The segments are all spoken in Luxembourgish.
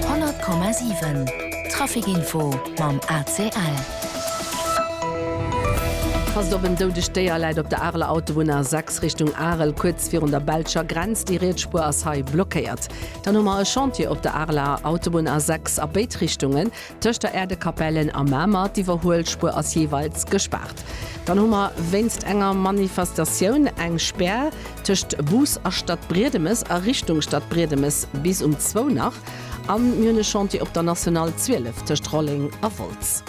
100,7 Trafic-Info mam ACL. Passt op, en doudegt Déier läit op der Areler Autobunn A6 Richtung Arel, kuerz virun der belscher Grenz. Déi riets Spuer ass hei blockéiert. Dann hu mer e Chantier op der Areler Autobunn A6 a béid Richtungen. Tëscht der Erdekapellen a Mamer, d'Iwwerhuelspuer ass jeeweils gespaart. Dann hu mer wéinst enger Manifestatioun eng Spär tëscht Bus a Stadbriedemes a Richtung Stadbriedemes bis um zwou nach. An mir hunn e Chantier op der National 12 tëscht Rolleng a Wolz.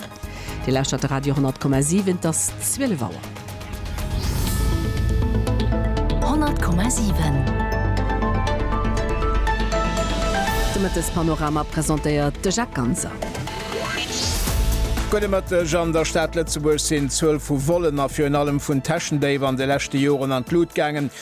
Dir lauschtert de Radio 100,7, et ass 12 Auer. 100,7 De Mëttespanorama presentéiert de Jacques Ganser. Gudde Mëtteg. An der Stad Lëtzebuerg sinn d'Zuel vu Vollena virun allem vun Täschendéif an de leschte Joren an d'Lut gaangen.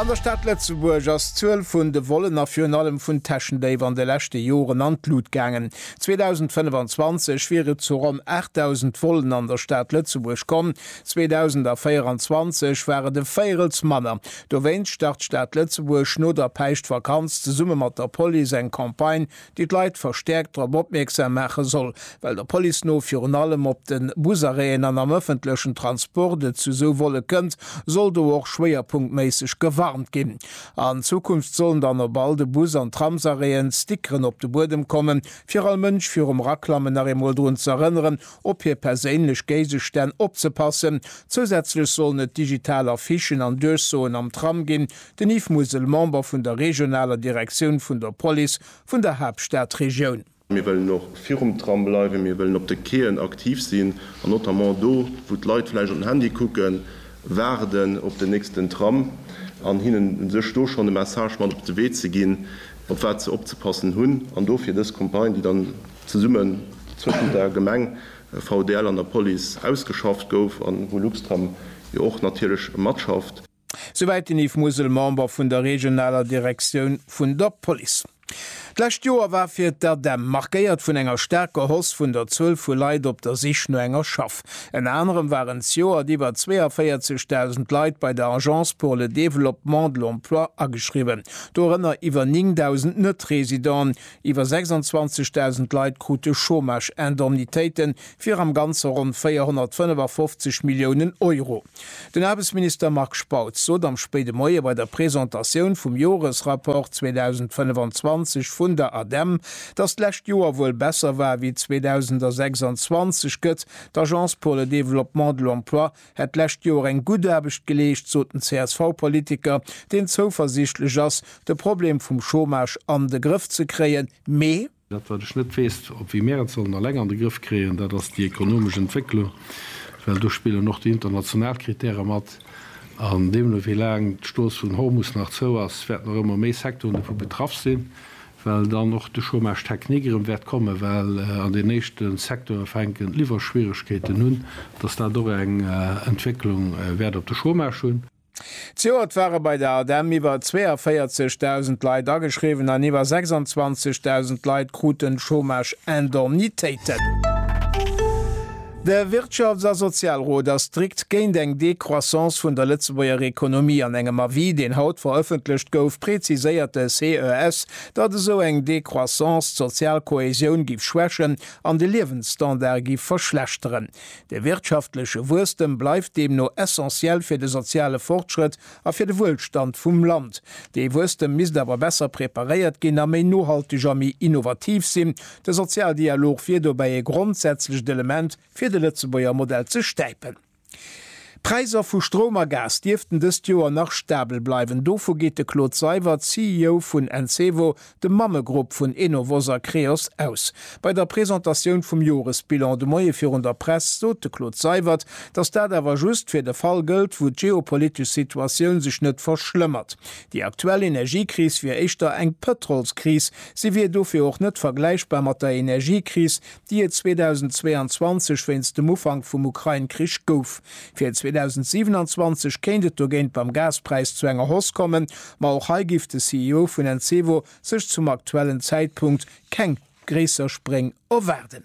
An der Stad Lëtzebuerg ass d'Zuel vun de Vollen a virun allem vun Täschendéif an de leschte Joren an d'Lut gaangen. 2025 wier et zu ronn 8.000 Vollen an der Stad Lëtzebuerg komm, 2024 war et e Véirels manner. Dowéinst start d'Stad Lëtzebuerg no der Päischtvakanz zesumme mat der Police eng Campagne déi d'Leit verstäerkt drop opmierksam maache soll, well der Police no virun allem op de Busarrêten an am ëffentlechen Transport et zu esou Volle kënnt, soll do och schwéierpunktméisseg gewarnt ginn. An Zukunft sollen dann op all de Bus an Tramsarrêten Stickeren op de Buedem kommen, fir all Mënsch virum Eraklammen nach eemol drun ze erënneren, op hir perséinlech Géigestänn opzepassen. Zousätzlech sollen et digital Affichen an Duerchsoen am Tram ginn, Den Yves Musel, Member vun der regionaler Direktioun vun der Police vun der Haaptstadregioun. Mir wëllen och virum Tram bleiwen. Mir wëllen op de Quaien aktiv sinn an notamment do, wou d'Leit vläicht op den Handy kucken, waarden op den nächsten Tram an hinnen u sech do schonn e Message mat op de Wee ze ginn, op wat se opzepassen hunn. An dofir dës Campagne, déi dann zesummen zwëschent der Gemeng, VDL an der Police ausgeschafft gouf an wou Luxtram jo och natierlech matschafft. Souwäit den Yves Musel, Member vun der regionaler Direktioun vun der Police. D'lescht Joer war fir d'ADEM markéiert vun enger staarker Hausse vun der Zuel vu Leit op der Sich no enger Schaff. Ënner anerem waren zejoert iwwer 42.000 Leit bei der Agence pour le développement de l'emploi ageschriwwen, dorënner iwwer 9.000 Net-Residenten. Iwwer 26.000 Leit krute Chômage-Indemnitéiten fir am Ganze ronn 455 Milliounen Euro. Den Aarbechtsminister Marc Spautz sot am spéide Moie bei der Presentatioun vum Joresrapport 2025 vun der ADEM, datt d'lescht Joer wuel besser war ewéi 2026 gëtt. D'Agence pour le développement de l'emploi hätt d'lescht Joer eng gutt Aarbecht geleescht, sot den CSV-Politiker, deen zouversiichtlech ass, de Problem vum Chômage an de Grëff ze kréien, mee. Dat, wat ech net weess, ob wéi mär et sollen alleng an de Grëff kréien, dat ass déi ekonomesch Entwécklung, well do spillen och déi international Kritäre mat. An deemno, wéi laang d'Strooss vun Hormus nach zou ass, wäerten och ëmmer méi Secteuren dovu betraff sinn, well dann och de Chômage technique erëm wäert kommen, well an den éischte Secteure fänken d'Liwwerschwieregkeeten un, dass dat och eng Entwécklung wäert op de Chômage hunn. Zejoert ware bei der ADEM iwwer 42.000 Leit ageschriwwen an iwwer 26.000 Leit kruten Chômage-Indemnitéiten. De Wirtschafts a Sozialrot ass strikt géint eng Décroissance vun der Lëtzebuerger Ekonomie. An engem Avis, deen haut verëffentlecht gouf, präziséiert de CES, datt esou eng Décroissance d'sozial Kohäsioun giff schwächen an de Liewensstandard giff verschlechteren. De wirtschaftleche Wuesstem bleift deemno essentiell fir de soziale Fortschrëtt a fir de Wuelstand vum Land. Dee Wuesstem misst awer besser preparéiert ginn a méi nohalteg a méi innovativ sinn. De Sozialdialog wier dobäi e grondsätzlecht Element, fir de Lëtzebuerger Modell ze stäipen. D'Präisser vu Stroum a Gas dierften dëst Joer nach stabel bleiwen. Dovu geet de Claude Seywert, CEO vun Encevo, de Mammegrupp vun Enovos a Creos aus. Bei der Presentatioun vum Joresbilan de Moie virun der Press sot de Claude Seywert, datt dat awer just fir de Fall gëllt, wou d'geopolitesch Situatioun sech net verschlëmmert. Déi aktuell Energiekris wier éischter eng Pëtrolskris. Si wier dofir och net vergläichbar mat der Energiekris, déi et 2022 wéinst dem Ufank vum Ukrain-Krich gouf. Fir 2027 kéint et dogéint beim Gaspräis zu enger Hausse kommen, Ma och hei giff de CEO vun Encevo sech zum aktuellen Zäitpunkt keng gréisser Spréng erwaarden.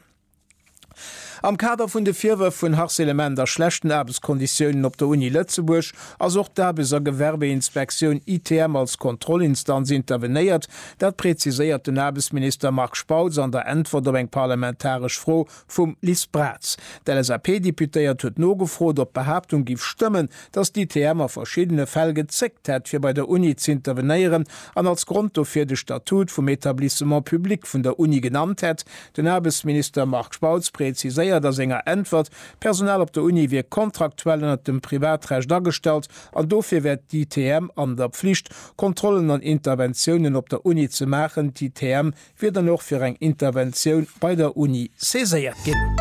Am Kader vun de Virwërf vun Harcelement a schlechten Aarbechtskonditiounen op der Uni Lëtzebuerg ass och d'Aarbechts a Gewerbeinspektioun, ITM, als Kontrollinstanz intervenéiert. Dat preziséiert den Aarbechtsminister Marc Spautz an der Äntwert op eng parlamentaresch Fro Vum Liz Braz. D'LSAP-Deputéiert huet nogefrot, ob d'Behaaptung giff stëmmen, datt d'ITM a verschiddene Fäll gezéckt hätt, fir bei der Uni z'intervenéieren, an als Grond dofir de Statut vum Etablissement public vun der Uni genannt hätt. Den Aarbechtsminister Marc Spautz präziséiert a senger Äntwert, d'Personal op der Uni wier kontraktuell ënnert dem Privatrecht agestallt an dofir wär d'ITM an der Pflicht, Kontrollen an Interventiounen op der Uni ze maachen. D'ITM wier dann och fir eng Interventioun bei der Uni saiséiert ginn.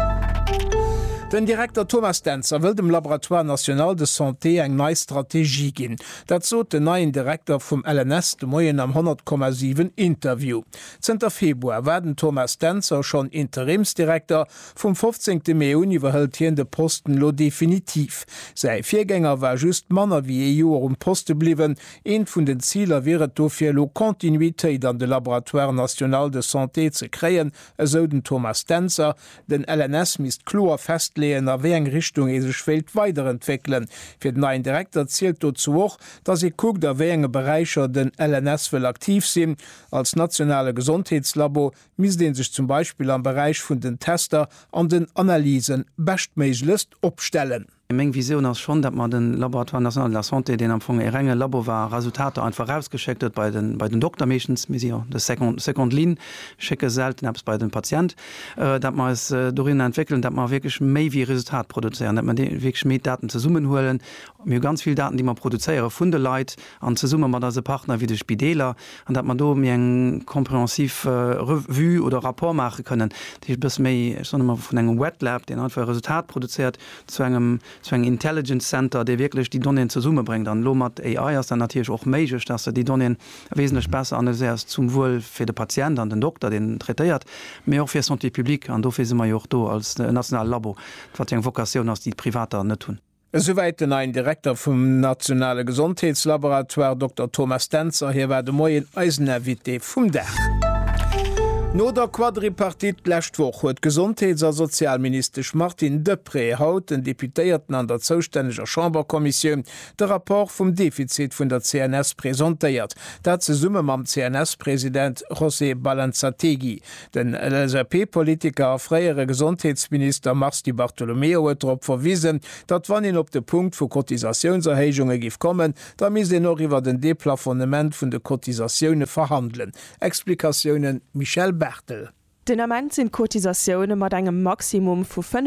Den Direkter Thomas Dentzer wëll dem Laboratoire national de santé eng nei Strategie ginn. Dat sot den neien Direkter vum LNS de Moien am 100,7 Interview. Zënter Februar war den Thomas Dentzer schonn Interimsdirekter. Vum 15 Mee un iwwerhëlt hien de Posten elo definitiv. Säi Virgänger war just manner wéi ee Joer um Poste bliwwen, Eent vun den Ziler wier et dofir, elo Continuitéit an de Laboratoire national de santé ze kréien, esou den Thomas Dentzer. Den LNS misst kloer festleeën, a wéi eng Richtung ee sech wéilt weiderentwéckelen. Fir den neien Direkter zielt dozou och, datt ee kuckt, a wéi enge Beräicher den LNS wëll aktiv sinn. Als nationale Gesondheetslabo misst ee sech zum Beispill am Beräich vun den Tester an den Analyse beschtméiglechst opstellen. Meng Visioun ass schonn, datt mer den Laboratoire national de la santé, deen am Fong e renge Labo war a Resultater einfach erausgeschéckt huet bei den Dokter meeschtens, mir si jo de seconde ligne, schécke selten eppes bei den Patient, datt mer eis dorinner entwéckelen, datt mer wierklech méi wéi e Resultat produzéieren, datt mer wierklech méi Daten zesummenhuelen. Mir hu ganz vill Daten, déi mer produzéiere vun de Leit an zesumme mat eise Partner wéi de Spideeler, an datt mer do méi eng compréhensif Revue oder Rapport maache kënnen, dat heescht e bësse méi, ech soen ëmmer, vun engem Wet Lab, deen einfach e Resultat produzéiert, zu engem zu engem Intelligence Center, dee wierklech déi Donnéeën zesummebréngt. An elo mat AI ass dat natierlech och méiglech, dass Der déi Donnéeën wesentlech besser analyséiert, zum Wuel fir de Patient an den Dokter, deen en traitéiert, mee och fir Santé publique. An dofir si mer jo och do als nationale Labo, wat jo eng Vocatioun ass, déi d'Privater net hunn. Esouwäit den neien Direkter vum nationale Gesondheetslaboratoire, Dokter Thomas Dentzer. Hie war de Moien eisen Invité. Vum Dag. No der Quadripartite d'lescht Woch huet d'Gesondheets a Sozialministesch Martine Deprez haut den Deputéierten an der zoustänneger Chamberkommissioun de Rapport vum Defizit vun der CNS presentéiert, dat zesumme mam CNS-President José Balanzategui. Den LSAP-Politiker a fréiere Gesondheetsminister Mars Di Bartolomeo huet drop verwisen, datt wann een op de Punkt vu Cotisatiounserhéijunge giff kommen, Da misst een och iwwer en Deplafonnement vun de Cotisatioune verhandelen. Explikatiounen, Michèle Barthel. Den Ament sinn d'Cotisatioune mat engem Maximum vu 5